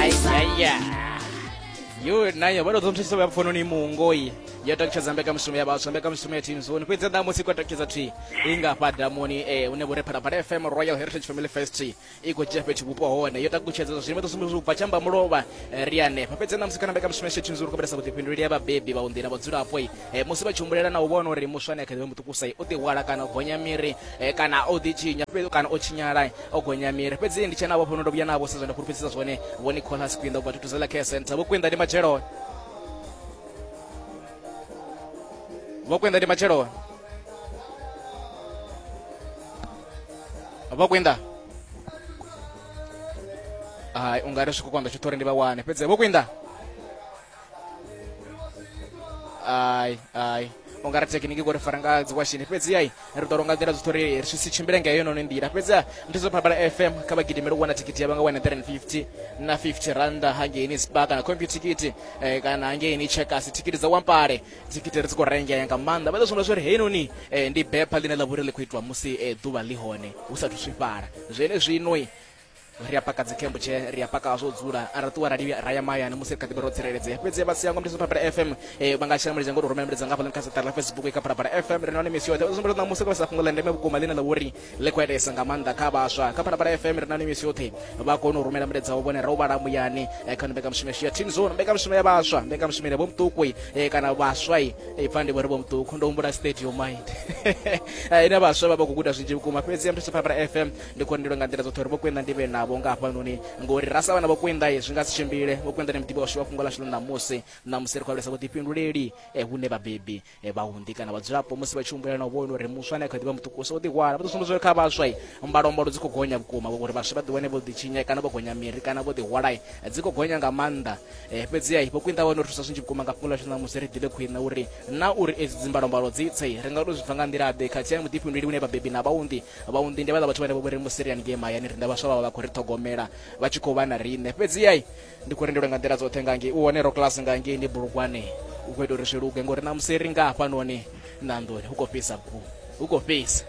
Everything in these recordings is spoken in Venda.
ayaya yo nayo vha tou ḓo nthusisa vha pfononi mungoi yo takutshedza mbekanyamushumo ya vhaswa mbekanyamushumo ya team zone fhedzi ḓa musi i khou takutshedza thi i nga fha damuni e hune vho ri phalaphala fm royal heritage family fest i khou dzhia fhethu vhupo hone yo takutshedza zwa zwino ḓo sumbedza u bva tshambamulovha ri hanefha fhedzi ḓa musi kana mbekanyamushumo ya team zone u khou vhalesa vhuḓifhinduleli ya vhabebi vhaunḓi na vhadzulapo eh, musi vha tshi humbulela na u vhona uri muswa ane a kha ḓivha muṱukusa o ḓihwala kana o gonya miri eh, kana o ḓitshinya kana o tshinyala o gonya miri fhedzi ndi tshe navho fhono ndo vhuya navho sa zwa ndi fhulufhedzisa zwone vho nicolas kwinda ubva thutuzela care center vho kwinda ndi matshelo vho kwinda ndi matshelo vho kwinda hai ungari swika kwanda tshiṱori ndi vha wane fhedzi vho kwinda ai ai ungari tekiniki kuti faranga dziwashini fhedzi ai ri ḓo longa nḓila zwoṱhe uri ri si tshimbile nga yo noni nḓila fhedzi ndi zwo phalaphala fm kha vha gidimele u wana thikiti ya vha nga wana 350 na 50 randa hangeini spa kana compu thikiti eh, kana hangeini checkasi thikiti dza wampale thikiti ri dzi khou rengea nga maanḓa vha ḓo sumbedza zwa uri hei noni eh, ndi bepha ḽine ḽa vha uri ḽi khou itiwa musi eh, ḓuvha ḽi hone hu sathu swifhala zwenezwinoi ri a paka dzikhembo tshee ri a paka zwo dzula a ri ṱuwa rali ra ya mahayani musi ri kha ḓivha ro tsireledzea fhedzi vha sia ngomdeso phalaphala fm eh, vha nga shela mulenzhe ngo ri rumela milaedza nga hafhaḽani kha saṱari ḽa facebook i kha phalaphala fm ri na hone misi yoṱhe u sumbedza ṋamusi kho sa fhungo ḽa ndeme vhukuma ḽine ḽa vha uri ḽi khou itesa nga maanḓa kha vhaswa kha phalaphala fm ri na hone misi yoṱhe vha kone u rumela milaedza wo vhone ra u vhala muyani eh, kha mbekanyamushumo yashu ya team zone mbekanyamushumo ya vhaswa mbekanyamushumo ine vho muṱuku eh, kana vhaswa i pfa ndi vho ri vho muṱuku ndo humbula stadium mind ine vhaswa vha vha khou guda zwinzhi vhukuma fhedzi ya muthu sa phalaphala fm ndi khou ndilo nga nḓila dzoṱhe uri vhokwenda ndi vhe navho nga hafhanoni ngori ra sa vha na vhokwenda zwi nga si tshimbile vhokwenda ni muḓivhi washu wa fhungo lashu ḽa ṋamusi ṋamusi ri khou alusa vhuḓifhinduleli eh, hune vhabebi eh, vhaunḓi kana vhadzulapo musi vha tshi humbulela na u vhona uri muswa ane a kha ḓivha muṱukusa u ḓihwala vha ḓo sumbedza uri kha vhaswa eh, mbalombalo dzi khou gonya vhukuma uri vhaswa vha ḓiwane vho ḓitshinya kana vho gonya miri kana vho ḓihwala dzi khou gonya nga maanḓa fhedziha vhokwinda vha no thusa zwinzhi vhukuma nga fhungo lashu ṋamusi ri ḓivhe khwine uri na uri edzi dzimbalombalo dzi tse ri nga to zwi bva nga nḓila ḓe khathihi muḓifhinduleli une vhabebi na vhaunḓi Vhaunḓi ndi vhaḽa vhathu vhane vho vhori musi ri haningei mahayani riṋe vhaswa vha vha vha khou ri ṱhogomela vha tshi khou vha na riṋe fhedziha ndi khou rendelwe nga nḓila dzoṱhe nga ngei u hone ro class nga ngei ni bulugwane u khou ita uri zwi luge ngori na musi ri nga hafhanoni na nḓuni hu khou fhisa vhukuma hu khou fhisa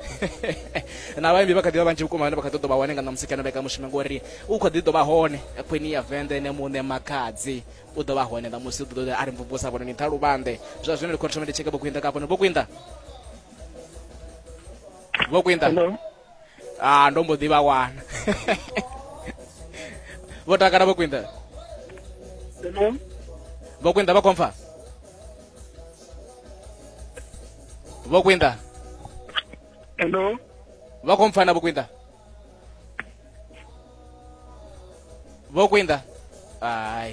na vhaimbi vha kha ḓi vha vhanzhi vhukuma vhane vha kha ḓi ḓo vha hone nga ṋamusi kana vheka mushumo ngori u kha ḓi ḓo vha hone khwini ya vende ene muṋe makhadzi u ḓo vha hone ṋamusi u ḓo ḓo a ri mvumvusa vhone ni ṱhaluvhanḓe zwa zwino ndi khou thoma ndi tsheke vhokwinḓa ka hafhano vhokwinḓa vho kwinda hello ah ndo mbo ḓi vha wana vho takala vho kwinda hello vho kwinda vha khomfa vho kwinda hello vha khomfa na vho kwinda vho kwinda ai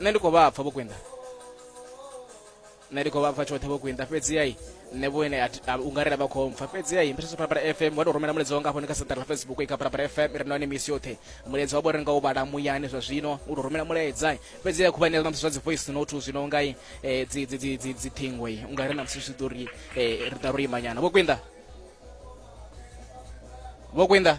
nṋe ndi khou vha pfa vho kwinda nṋe ndi khou vha pfa tshoṱhe vho kwinda fhedziha nṋe vhoene ungarela vha khou mpfa fhedziha i mbeseso parapara fm wa tou rumela mulaedza wanga hafhoni kha saḓara ḽa facebook i kha parapara fm i re nahone misi yoṱhe mulaedza wa vho ri nga u vhala muyani zwa zwino u tou rumela mulaedza fhedziha khuvha ṋea namusi zwa dzi voice note zwino nga dziṱhingo i unga ri namusi zwi ḓo ri ri ḓa ro imanyana vho kwinda vho kwinda